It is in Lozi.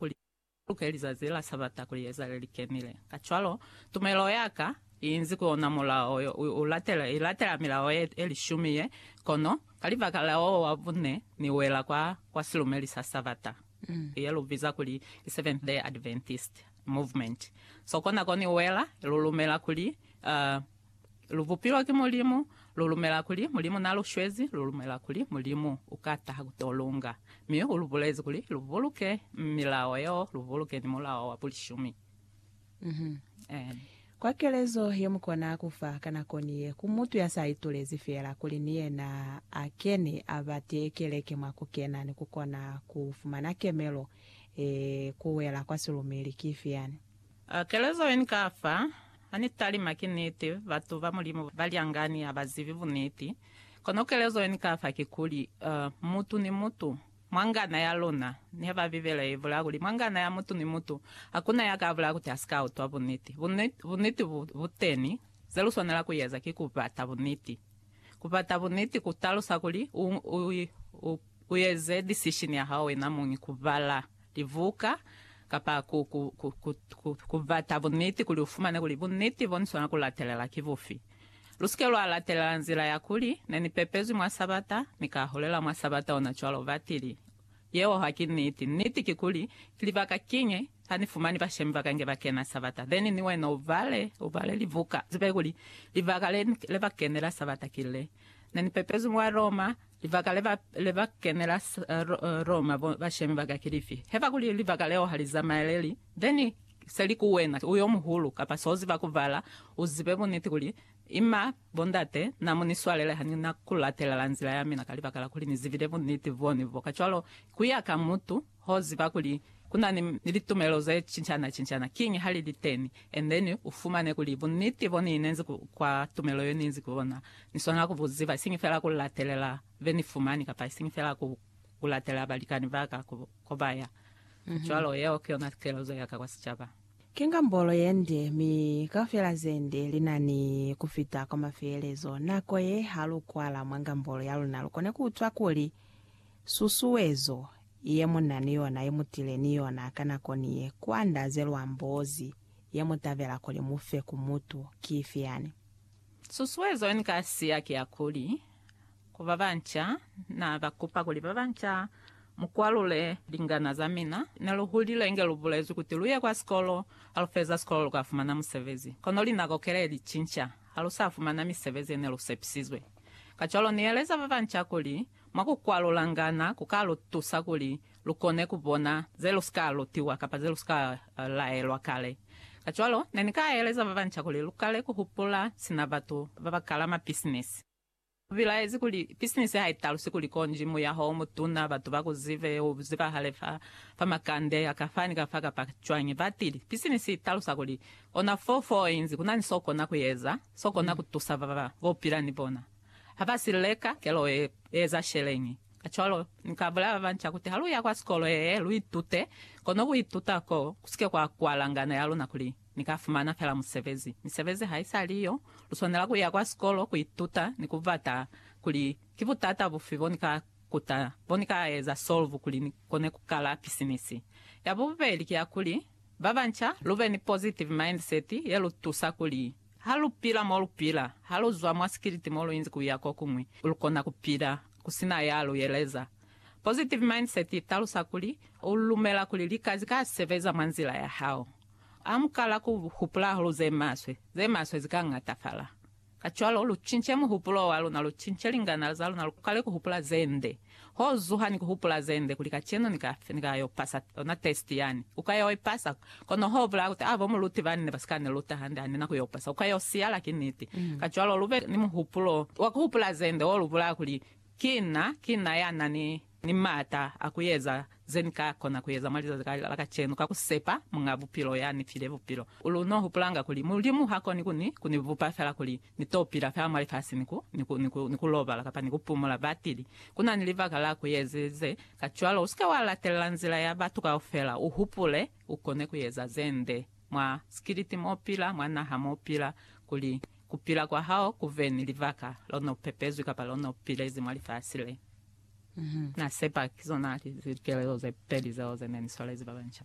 kuli ku luke lizazi la Sabata kuli ezale li kenile. Kacwalo, tumelo ya ka i inzi ku ona mulao yo, i latela milao ye, ye lishumi ye, kono ka libaka la wo wa bune ni wela kwa, kwa silumeli sa Sabata, ye lu biza kuli ki Seventh-day Adventist Movement. So, konako ni wela, lu lumela kuli, uh, Lu bupilwa ki Mulimu, lu lumela kuli Mulimu n'a lu shwezi, lu lumela kuli Mulimu u ka taha ku t'o lu nga. Mi u lu bulezi kuli lu buluke milao yeo, lu buluke ni mulao wa bulishumi. Amen. Kwa kelezo ye mu kona ku fa ka nako ni ye ku mutu ya sa itulezi fela kuli ni yena a kene a ba tee keleke mwa ku kena ni ku kona ku fumana kemelo ye ku wela kwa silumeli ki ifi yani? A Kelezo yeni ka fa ha ni talima ki niti, batu ba Mulimu ba lyangani ha ba zibi buniti. Kono kelezo yeni ka fa kikuli, uh, mutu ni mutu, mwa ngana ya luna, niha ba Bibele ye bulaa kuli mwa ngana ya mutu ni mutu, hakuna ya ka bulaa kuti a si ka utwa buniti. Buniti, buniti bu, bu teni. Ze lu swanela ku eza ki ku bata buniti. Ku bata buniti ku talusa kuli u, u, u, U eze decision ya hao wena muñi ku bala libuka kapa ku, ku, ku, ku, ku, ku bata buniti kuli u fumane kuli buniti bo ni swana ku latelela ki bufi. Lu si ke lwa latelela nzila ya kuli, Ne ni pepezwi mwa Sabata, mi ka hulela mwa Sabata ona cwalo. Ba tili, Yeo ha ki niti. Niti kikuli, Ki libaka kiñi ha ni fumani bashemi ba ka nge ba kena Sabata? Then ni wena u bale, u bale libuka, u zibe kuli libaka le, le ba kenela Sabata ki le, Ne ni pepezwi mwa Roma, Libaka le ba, le ba kenela Roma bo bashemi ba ka ki lifi? Heba kuli libaka leo ha li zamaeleli, then se li ku wena u yomuhulu, kapa so ziba ku bala, u zibe buniti kuli, Ima, bo ndate, na mu ni swalele ha ni na ku latelela nzila ya mina ka libaka la kuli ni zibile buniti boni bo. Kacwalo, ku ya ka mutu. Ho ziba kuli ku na ni, ni litumelo ze cincaana-cincaana, kiñi ha li li teni. And then u fumane kuli bunniti bo ni inezi ku, kwa tumelo yo ni inzi ku yona, ni swanela ku bu ziba, isiñi fela ku latelela be ni fumani, kapa isiñi fela ku, ku latelela balikani ba ka ku, ko ba ya. Cwalo, yeo ki yona kelezo ya ka kwa sicaba. Ki ngambolo ye nde, mi kaufela ze nde li na ni ku fita kwa mafeelezo. Nako ye, ha lu kwala mwa ngambolo ya luna, lu kone ku utwa kuli, Susuezo ye mu na ni yona ye mu tile ni yona ka nako ni ye ku andaze lwa mbozi ye mu tabela kuli mu fe ku mutu ki ifi yani? Susuezo ye ni ka siya ki ya kuli, ku ba banca, na ka kupa kuli ba banca mu kwalule lingana za mina. Ne lu hulile inge lu bulezwi kuti lu ye kwa sikolo, ha lu feza sikolo lu ka fumana musebezi. Kono linako kele li cinca, ha lu sa fumana misebezi ye ne lu sepisizwe. Kacwalo ni yeleza ba banca kuli, Mwa ku kwalulangana ku ka lu tusa kuli lu kone ku bona ze lu si ka lutiwa kapa ze lu si ka laelwa kale. Kacwalo, ne ni ka eleza ba banca kuli lu kale ku hupula sina batu ba ba kala mapisinisi. U bilaezi kuli, Pisinisi ha i talusi kuli konji muyaho o mutuna, batu ba ku zibe, u zibahale fa fa makande a ka fa ni ka fa kapa cwañi. Batili, Pisinisi i talusa kuli ona foo foo inzi ku na ni s'o kona ku eza, s'o kona ku tusa ba ba u pila ni bona. Ha ba si leka, kelo e eza sheleñi? Kacwalo, Ni ka bulela ba banca kuti ha lu ya kwa sikolo yee, lu itute, kono ku ituta koo, ku si ke kwa kwala ngano ya luna kuli, Ni ka fumana fela musebezi. Misebezi ha i sa li yo. Lu swanela ku ya kwa sikolo, ku ituta, ni ku bata kuli, Ki butata bufi bo ni ka kuta, bo ni ka eza solve kuli ni kone ku kala pisinisi? Ya bubeli ki ya kuli, ba banca, lu be ni positive mindset ye lu tusa kuli, Ha lu pila mo lu pila, ha lu zwa mwa sikiliti mo lu inzi ku ya ko kuñwi, lu kona ku pila ku si na ya lu yeleza. Positive mindset i talusa kuli, u lumela kuli lika zi ka sebeza mwa nzila ya hao. Ha mu kala ku hupula hahulu ze maswe, ze maswe zi ka ñatafala. Kacwalo, lu cince muhupulo wa luna, lu cince lingana za luna, lu kale ku hupula ze nde. Ho zuha ni ku hupula ze nde kuli kacenu ni ka, ni ka yo pasa ona test yani. U ka yo i pasa, kono ho bulaya kuti, ah, bo muluti bani ne ba si ka ni luta hande, ha ni na ku yo pasa. U ka yo siyala, ki niti. Kacwalo lu be ni muhupulo wa ku hupula ze nde wo lu bulaya kuli, Ki na, ki na ya na ni, ni m'ata a ku eza Ze ni ka kona ku eza mwa lizazi la ka la kacenu ka ku sepa Muñ'a Bupilo ya ni file bupilo. Lu n'o hupulanga kuli Mulimu ha koni ku ni, ku ni bupa fela kuli ni t'o pila fela mwa lifasi ni ku, ni ku, ni ku, ni ku lobala kapa ni ku pumula batili. Ku na ni libaka la ku ezi ze. Kacwalo u si ke wa latelela nzila ya batu kaufela. U hupule, u kone ku eza ze nde, mwa sikiliti m'o pila, mwa naha m'o pila, kuli ku pila kwa hao ku ve ni libaka, lo n'o pepezwi kapa lo n'o pilezi mwa lifasi le. Na sepa ki zona likelelo ze peli zeo ze ne li swarezi ba banca.